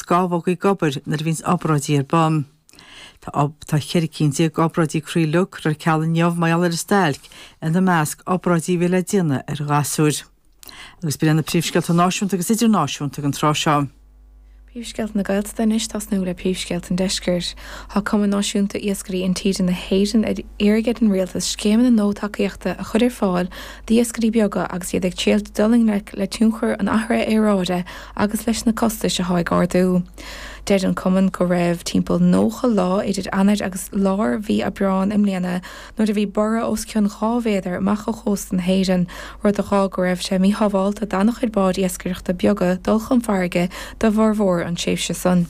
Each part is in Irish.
ag obair nuair a bhíonns obráidí ar bun. Tá ceithre cinn déag obráidí croí le cur ar ceal inniu mar gheall ar an stailc, ina measc, obráidí a bhí le déanamh ar ghasúir. Agus b'in iad na príomhscéalta náisiúnta agus idirnáisiúnta ag an tráth seo. Príomhscéalta na Gaeltachta anois tosnóm le príomhscéalta an deiscirt. Tá Cumann Náisiúnta Iascairí Intíre na hÉireann ag iarraidh ar an Rialtas scéimeanna nua tacaíochta a chur ar fáil d'iascairí beaga agus iad ag triail dul i ngleic le tionchar an athraithe aeráide agus leis na costais atá ag ardú. Deir an cumann go raibh timpeall 90 lá idir Eanáir agus lár mhí Aibreáin i mbliana nuair a bhí borradh os cionn dhá mhéadar amach ó chósta na hÉireann, rud a d'fhág go raibh sé míshábháilte d'an-chuid báid iascaireachta beaga dul chun farraige de bhformhór an tréimhse san.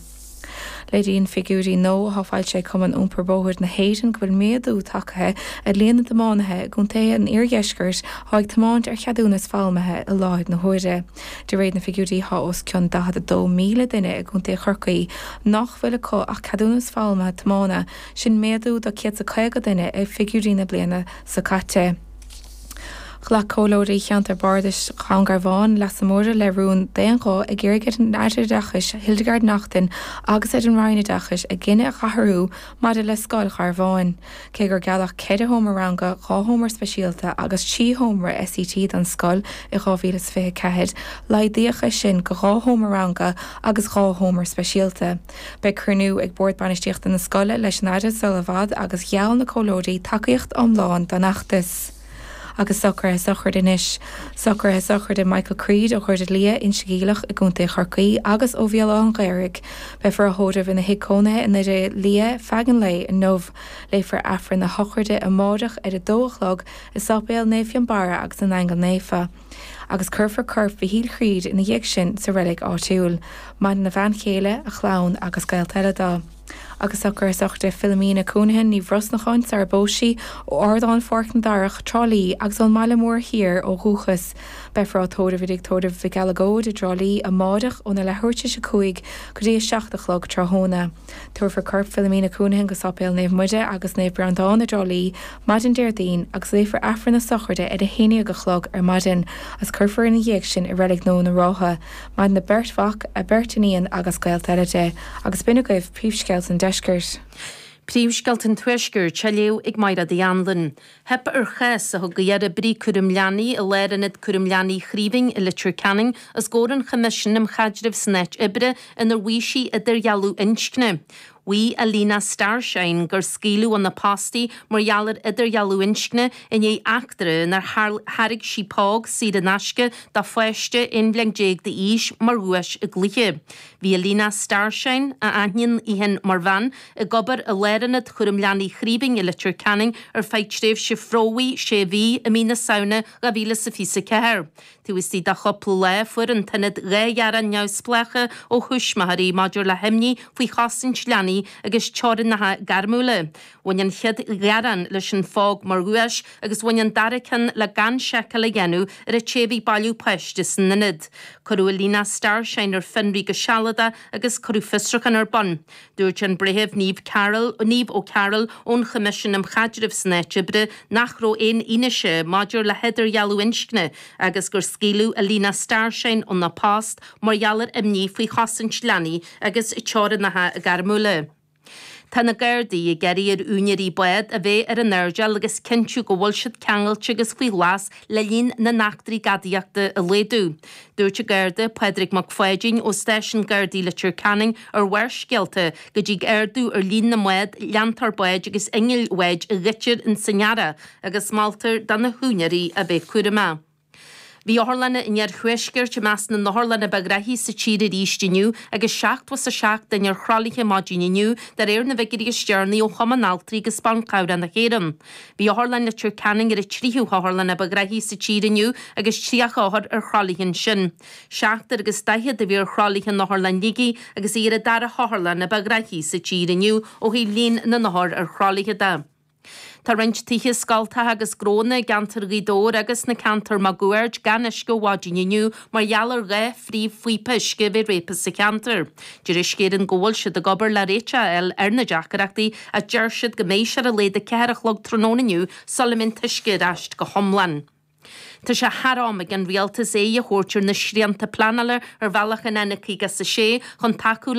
Léiríonn figiúirí nua atá foilsithe ag Cumann Iompar Bóthair na hÉireann go bhfuil méadú tagaithe ar líon na dtiománaithe i gcontaetha an Iardheiscirt atá ag tiomáint ar cheadúnas foghlamtha i láthair na huaire. De réir na figiúirí tá os cionn 42,000 duine i gContae Chorcaí nach bhfuil acu ach ceadúnas foghlamtha tiomána, sin méadú de 150 duine ar fhigiúirí na bliana seo caite. Ghlac comhairleoirí Cheantar Bardais Dhún Garbhán, Leasa Móire le rún d'aon ghuth ag iarraidh ar an Aire Oideachais Hildegarde Naughton agus ar an Roinn Oideachais a gcinneadh a athrú maidir le Scoil Gharbháin. Cé gur gealladh ceithre sheomra ranga, dhá sheomra speisialta agus trí sheomra SET don scoil i 2024, laghdaíodh é sin go dhá sheomra ranga agus dhá sheomra speisialta. Beidh cruinniú ag Bord Bainistíochta na scoile leis an Aire sul i bhfad agus gheall na comhairleoirí tacaíocht iomlán don fheachtas. Agus socruithe sochraide anois. Socruithe sochraide Michael Creed ó Dhoire Liath, Inse Geimhleach i gContae Chorcaí agus ó Bhéal Átha'n Ghaorthaidh. Beifear á thórramh ina thigh cónaithe i nDoire Liath feadh an lae inniu. Léifear Aifreann na Sochraide amáireach ar a dó a chlog i Sáipéal Naomh Fionnbarra agus na nAingeal Naofa. agus cuirfear corp Mhichíl Chríd ina dhiaidh sin sa reilig áitiúil, maireann a bhean chéile, a chlann agus gaolta eile do. Agus socruithe sochraide Philomena Counihan Ní Bhrosnacháin sarar phós sí, ó Ardán Pháirc na Darach, Trá Lí agus ón mBaile Mór thiar ó dhúchas, beifear á tórramh i dTigh Tórraimh Mhic Giollagóid i dTrá Lí amáireach óna leathuair tar éis a cúig go dtí a seacht a chlog tráthnóna. Tabharfar corp Philomena Counihan go Sáipéal Naomh Mhuire agus Naomh Breandán i dTrá Lí maidin Déardaoin agus léifear Aifreann na Sochraide ar a haon déag a chlog ar maidin agus cuirfear ina dhiaidh sin i Reilig Nua na Rátha maireann a beirt mhac, a beirt iníon agus gaolta eile di. Agus b'in agaibh príomhscéalta an Deiscirt. Príomhscéalta an Tuaiscirt, á léamh ag Máire Ní Anluain. Theip ar chás a thug iar-oibrí cúram leanaí i Lárionad Cúram Leanaí Chraoibhín i Leitir Ceanainn os gcomhair an Choimisiúin um Chaidreamh san Áit Oibre inar mhaígh sí idirdhealú inscne. Mhaígh Alina Starshine gur scaoileadh óna post í mar gheall ar idirdhealú inscne i ndiaidh eachtra inar thairg sí póg saor in aisce do pháiste 11 bhliain d'aois mar dhuais i gcluiche. Bhí Alina Starshine, a aithníonn í féin mar bhean, ag obair i Lárionad Chúram Leanaí Chraoibhín i Leitir Ceanainn ar feadh tréimhse phromhaidh sé mhí i mí na Samhna 2024. Taobh istigh de chúpla lá fuair an tIonad dhá ghearán neamhspleácha ó thuismitheoirí maidir le himní faoi chosaint leanaí agus teorainneacha gairmiúla. Bhain an chéad ghearán leis an phóg mar dhuais agus bhain an dara ceann le gan seiceáil a dhéanamh ar an té a bhí ag bailiú páistí san Ionad. Cuireadh Alina Starshine ar fionraí go sealadach agus cuireadh fiosrúchán ar bun. Dúirt an Breitheamh Niamh Carroll, Niamh O'Carroll ón Choimisiún um Chaidreamh san Áit Oibre nach raibh aon fhianaise maidir le hidirdhealú inscne agus gur scaoileadh Alina Starshine óna post mar gheall ar imní faoi chosaint leanaí agus teorainneacha gairmiúla. Tá na Gardaí ag iarraidh ar úinéirí bád a bheith ar an airdeall agus cinntiú go bhfuil siad ceangailte agus faoi ghlas le líon na n-eachtraí gadaíochta a laghdú. Dúirt an Garda Pádraig Mac Pháidín ó Stáisiún Gardaí Leitir Ceanainn, ar Bharrscéalta go dtig ardú ar líon na mbád, leantar báid agus innill bháid a ghoidtear in san earrach agus moltar do na húinéirí a bheith cúramach. Bhí otharlanna an iarthuaiscirt i measc na n-otharlanna ba ghnaithí sa tír arís inniu agus seachtó is a seacht duine ar thralaithe maidin inniu, de réir na bhfigiúirí is deireanaí ó Chumann Altraí agus Ban Cabhrach na hÉireann. Bhí Otharlann Leitir Ceanainn ar an tríú hotharlann ba ghnaithí sa tír inniu agus 30 othar ar thralaithe ansin. Seachtar agus daichead a bhí ar thralaithe in Otharlann Shligigh agus í ar an dara hotharlann ba ghnaithí sa tír inniu ó thaobh líon na n-othar ar thralaithe de. Tá roinnt tithe scoilteacha agus gnónna i gceantar Ghaoth Dobhair agus sna ceantair máguaird gan uisce ó mhaidin inniu mar gheall ar dhá phríomhphíopa uisce a bheith réabtha sa cheantar. Deir Uisce Éireann go bhfuil siad ag obair le réiteach a fháil ar na deacrachtaí ach deir siad go mbeidh sé ar a laghad a ceathair a chlog tráthnóna inniu sula mbíonn an t-uisce ar ais go hiomlán. Tá sé thar am ag an rialtas aghaidh a thabhairt ar na srianta pleanála ar bhealach an N56 chun tacú le